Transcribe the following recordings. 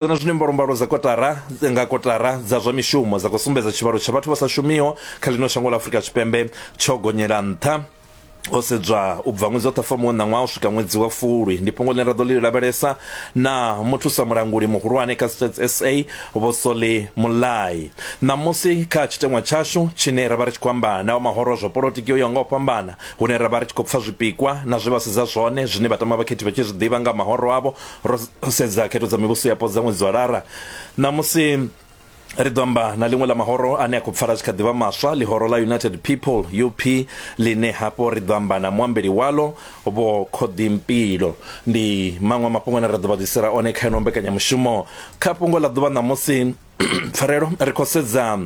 na zwine mbalombalo dza kotara nga kotara dza zwa mishumo dza khou sumbedza tshivhalo tsha vhathu vha sa shumiho kha ḽino shango ḽa afurika tshipembe tsho gonyela nṱha o sedzwa u bva ṅwedzi wa ṱhafamuwe wa ṋaṅwaha u swika ṅwedzi wa fulwi ndi fhungo ḽine ra ḓo ḽi lavhelesa na muthusa mulanguli muhulwane kha stats sa vho soli mulai ṋamusi kha tshiteṅwa tshashu tshine ra vha ri tshi khou amba na wa mahoro zwa polotiki o yaho nga u fhambana hune ra vha ri tshi khou pfa zwipikwa na zwe vha sedza zwone zwine vhatama vhakhethi vha tshi zwi ḓivha nga mahoro avho ro sedza khetho dza mivhuso yapo dza ṅwedzi wa lara ṋamusi ri ḓo amba na ḽiṅwe ḽa mahoro ane a khou pfala zwi kha ḓivha maswa ḽihoro ḽa united people up ḽine hafho ri ḓo amba na muambeli walo vho khoḓimpilo ndi maṅwe mafhungo ane ra ḓo vha ḓisela one kha ino mbekanyamushumo kha fhungo ḽa ḓuvha ṋamusi pfarelo ri khou sedza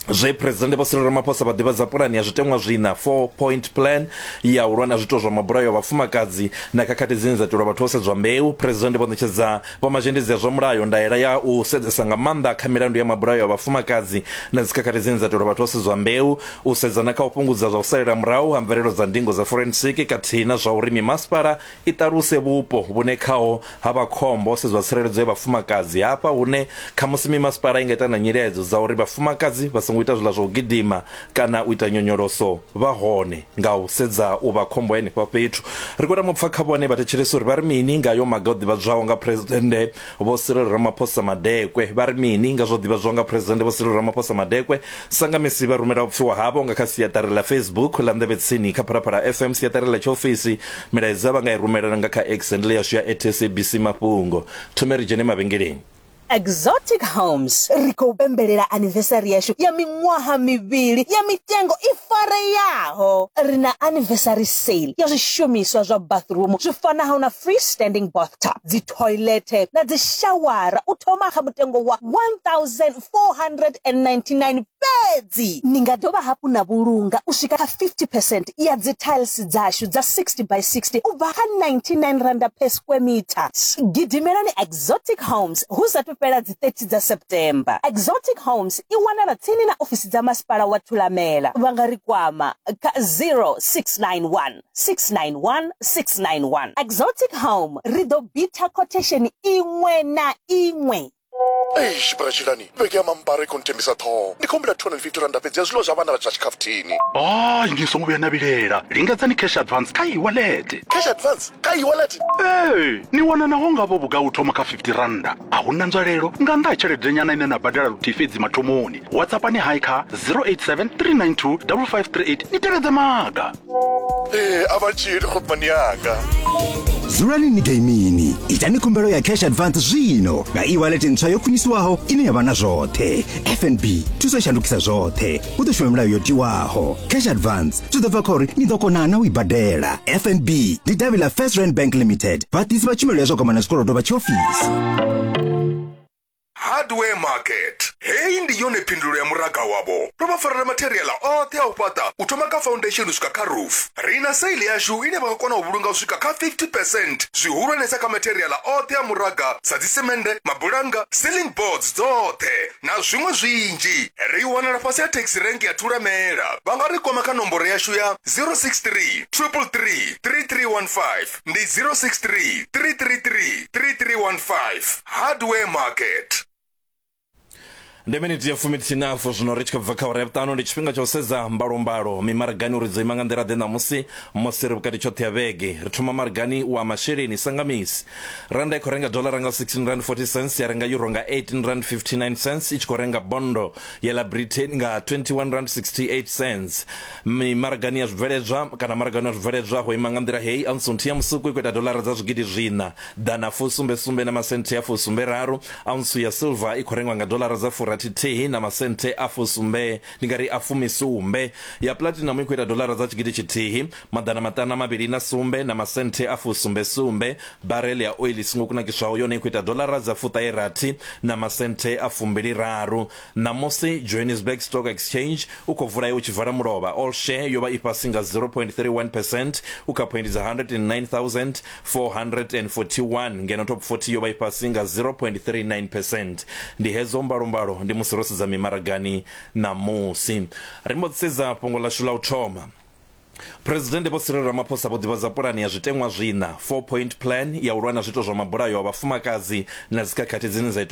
zwe presidente vho siriro ramaphosa vha ḓivhadza pulani ya zwiteṅwa zwina four point plan ya u lwa na zwiito zwa mabulayo a vhafumakadzi na khakhathi dzine dza itelwa vhathu ho sedzwa mbeu presidente vho ṋetshedza vhomazhendedzi ya zwa mulayo ndaela ya u sedzesa nga maanḓa kha milandu ya mabulayo a vhafumakadzi na dzikhakhathi dzine dza itelwa vhathu ho sedzwa mbeu u sedzana kha u fhungudza zwa u salela murahu ha mvelelo dza ndingo dza forensic khathihi na zwa uri mimasipala I ṱaluse vhupo vhune khaho ha vha khombo ho sedzwa tsireledzo ya vhafumakadzi, hafha hune khamusi mimasipala i nga ita na nyiledzo dza uri vhafumakadzi vha songo ita zwiḽa zwa u gidima kana u ita nyonyoloso vha hone nga u sedza u vha khombo ya henefha fhethu. Ri khou tama u pfa kha vhone vhathetshelesi uri vha ri mini nga hayo maga o ḓivhadzwaho nga Phresidennde Vho Cyril Ramaphosa Madekwe vha ri mini nga zwo ḓivhadzwa nga Phresidennde Vho Cyril Ramaphosa Madekwe? Sangamisi vha rumela u pfiwa havho nga kha siaṱari ḽa Facebook ḽa Nḓevhe Tsini kha Phalaphala FM, siaṱari ḽa tshiofisi. Milaedza vha nga i rumelana nga kha X handle yashu ya atSABC Mafhungo. Thome ri dzhene mavhengeleni. Exotic Homes, Ri khou pembelela anivesari yashu ya miṅwaha mivhili ya mitengo i fareaho. Ri na anivesari sale ya zwishumiswa zwa bathroom zwi fanaho na free standing bathtub, dzi thoilethe na dzishawara u thoma kha mutengo wa R1,499 fhedzi. Ni nga dovha hafhu na vhulunga u swika kha 50 percent ya dzithailisi dzashu dza 60 by 60 u bva kha R99 per square metre. Gidimelani Exotic Homes hu sa athu fhela dzi 30 dza September. Exotic Homes i wanala tsini na ofisi dza Masipala wa Thulamela. Vha nga ri kwama kha 0691. 691 691. Exotic Home ri ḓo bitha quotation iṅwe na iṅwe. eish bra tshilani vhege ya mambara i khou nthembisa ṱhoho ndi khou humbela 250 randa fhedzi ya zwiḽiwa zwa vhana vha zwa tshikhafuthini hayi ni songo vhuya na vhilela lingedzani cash advance kha iwalete cash advance kha iwalete ee ni wana naho ngavho vhugai u thoma kha 50 randa a hu na nzwalelo nga nnḓa ha tshelede nyana ine na badela luthihi fhedzi mathomoni whatsappani hai kha 087 392 5538 ni tevhedze maga ee a vha tshili khopmani yanga dzulani ni gaimini itani khumbelo ya cash advance zwino nga e-wallet ntswa yo khwiniswaho ine ya vha na zwoṱhe fnb thuso i shandukisa zwoṱhe hu ḓo shuma milayo yo tiwaho cash advance zwi ḓo bva kha uri ni ḓo kona na u i badela fnb ndi davhi ḽa first rand bank limited vhaḓisi vha tshumelo ya zwa kwamana zwikolodo vha tshiofisi Hardware Market. Heyi ndi yone phindulo ya muraga wavho. Ro vha farela matheriaḽa oṱhe a u fhaṱa u thoma kha foundation u swika kha roof. Ri na sale yashu ine vha nga kona u vhulunga u swika kha 50 percent zwihulwanesa kha matheriaḽa oṱhe a muraga sa dzisemende, mabulannga, ceiling boards dzoṱhe na zwiṅwe zwinzhi. Ri wanala fhasi ha taxi rank ya Thulamela. Vha nga ri kwama kha nomboro yashu ya 063 333 3315. ndi 063 333 3315 hardware market ndi miniti ya fumi tshinafu zwino ri tshi khou bva kha uri ya vhuṱanu ndi tshifhinga tsha u sedza mbalombalo mimaragani uri dzo ima nga nḓila ḓe ṋamusi musi ri vhukati tshoṱhe ya vhege ri thoma maragani wa masheleni sa nga misi randa i khou renga dolara nga 16 rand 40 cents ya renga euro nga 18 rand 59 cents i tshi khou renga bondo ya ḽa britain nga 21 rand 68 cents Mimaragani ya zwibveledzwa kana maragani wa zwibveledzwa ho ima nga nḓila heyi, Auntsnthi ya musuku i khou ita doḽara dza zwigidi zwiṋa, ḓana fusumbe sumbe na masenthe a fusumbe raru, aunsu ya silver i khou rengwa nga doḽara dza furathi thihi na masenthe a fusumbe, ndi nga ri a fumi sumbe, ya platinum i khou ita doḽara dza tshigidi tshithihi, maḓana maṱanu a mavhili na sumbe na masenthe a fusumbe sumbe, barrel ya oil i songo kunakiswaho yone i khou ita doḽara dza fuṱahe rathi na masenthe a fumbili raru. Ṋamusi, Johannesburg Stock Exchange u khou vula u tshi vala mulovha, all share yo vha i fhasi nga 0.31 percent u kha phoindi dza 109,441 ngeno Top 40 yo vha i fhasi nga 0.39 percent. Ndi hedzo mbalombalo ndi musi ro sedza mimaragani ṋamusi. Ri mbo ḓi sedza fhungo ḽashu ḽa u thoma. Phresidennde Vho Cyril Ramaphosa vho ḓivhadza pulane ya zwiteṅwa zwiṋa, four point plan, ya u lwa na zwiito zwa mabulayo a vhafumakadzi na dzikhakhathi dzine dza itelwa